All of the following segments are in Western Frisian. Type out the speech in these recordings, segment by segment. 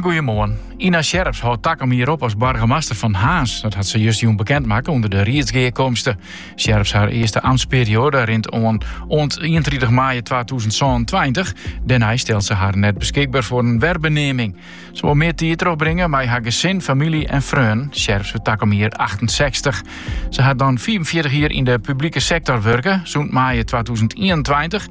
Goeiemoarn. Ina Sjerps hâldt takom jier op as boargemaster fan Harns. Dat hat se just jûn bekend makke ûnder de riedsgearkomste. Sjerps har earste amtsperioade rint oan oant ientritich maaie twatûzen sânentweintich. Dêrnei stelt se har net beskikber foar in werbeneaming. Se wol mear tiid trochbringe mei har gesin, famylje en freonen. Sjerps wurdt takom jier achtensechstich. Se hat dan fiifenfjirtich jier yn de publike sektor wurke. Sûnt maaie twatûzen ienentweintich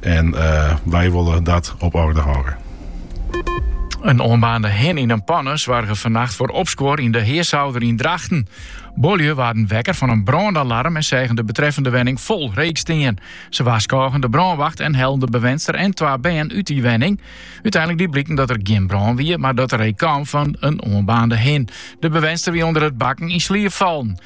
En wy wolle dat op oarder hâlde. In oanbaarnde hin yn in panne soarge fannacht foar opskuor yn De Hearsôlder yn Drachten. Buorlju waarden wekker fan in brânalarm en seagen de betreffende wenning fol reek stean. Se warskôgen de brânwacht en hellen de bewenster en twa bern út dy wenning. Uteinlik die bliken dat der gjin brân wie, mar dat de reek kaam fan in oanbaarnde hin. De bewenster wie ûnder it bakken yn sliep fallen.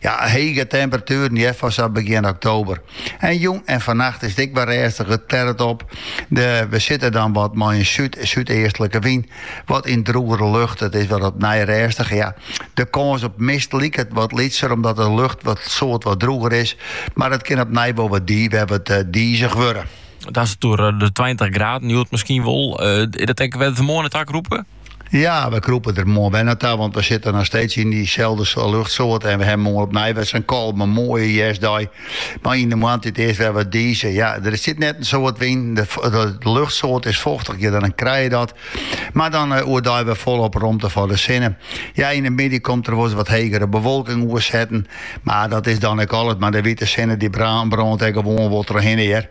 Ja, hege temperatueren hear foar sa begjin oktober. En jûn en fannacht is it ek wer rêstich, it klearret op. De, we sitte dan wat mei in súd, súdeastlike wyn. Wat in drûgere lucht. It is wat opnij rêstich. Ja, de kâns op mist liket wat lytser omdat de lucht wat, sa't wat drûger is. Mar it kin opnij wol wat di, we wat eh, dizich wurde. Dat is oer eh, de 20 graden, hjoed miskien wol. Uh, is dat ek wer wêr't we moarn nei ta krûpe? Ja, we krûpe der moarn wer nei ta, want we sitte noch steeds yn dyselde luchtsoarte en we hawwe moarn opnij wer sa'n kalme, moaie hjerstdei. Mar yn de moarntiid is it wer wat dizich. Ja, der sit net in soad wyn, de luchtsoarte is fochtiger, dan krij je dat. Mar dan eh, oerdei wer folop romte foar de sinne. Ja, yn de middei komt der wolris wat hegere bewolking oer setten, mar dat is dan ek alles. Mar de wite sinne die brânt ek gewoan wol trochhinne hear.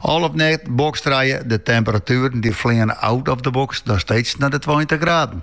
Al op NetBox trije de temperatueren dy fleane out of the box noch steeds nei de tweintich graden.